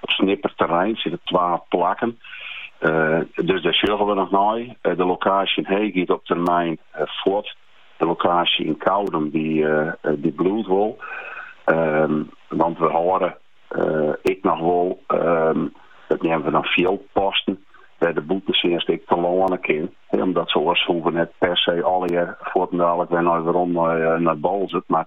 Op Snitser terrein sitte twa plakken, dus dêr sjogge we noch nei. De lokaasje yn Heech giet op termyn fuort. De lokaasje yn Koudum dy bliuwt wol. Want we hâlde ek noch wol, it neame we dan fieldposten, wêr't de bûtentsjinst ek telâne kin. Omdat se oars hoege we net per se allegear fuortendaliks wer nei werom nei Boalsert. Mar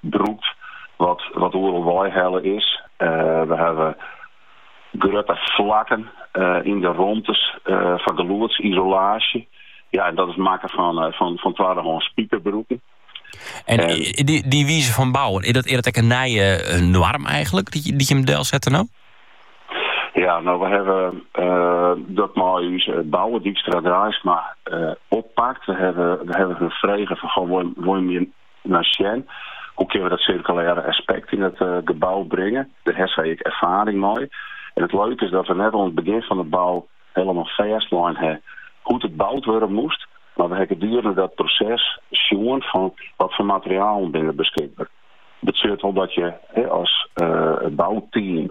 brûkt wat oeral weihelle is. We hawwe grutte flakken yn de romtes foar geluodsisolaasje. Ja, en dat is makke fan twaddehâns spikerbroeken. En dy wize fan bouwen, is dat ek in nije noarm eigenlik dy't jim delsette no? Ja, no we hawwe dat mei ús bouwer Dijkstra Draisma oppakt. We hawwe har frege fan, wol jim hjir nei sjen. Hoe kinne we dat sirkulêre aspekt yn it gebou bringe? Dêr ha sy ek erfaring mei. En it leuke is dat we net oan it begjin fan de bou hielendal fêstlein ha hoe't it boud wurde moast, mar we ha gedurende dat proses sjoen fan wat foar materialen binne der beskikber. Betsjut wol dat je as bouteam.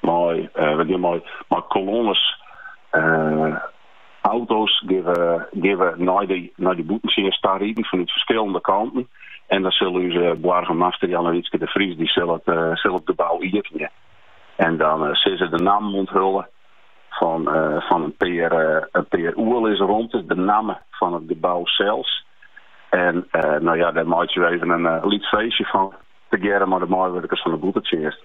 Mei, we gean mei, mei kolonnes auto's gean we, gean we nei de, nei de bûtentsjinst ta riden fanút ferskillende kanten. En dan sil ús boargemaster Jannewietske de Vries dy sil it, sil it gebou iepenje. En dan sil se de nammen ûnthulle fan, fan in pear, in pear oerlisromtes, de namme fan it gebou sels. En no ja, dêr meitsje we even in lyts feestje fan, tegearre mei de meiwurkers fan de bûtentsjinst.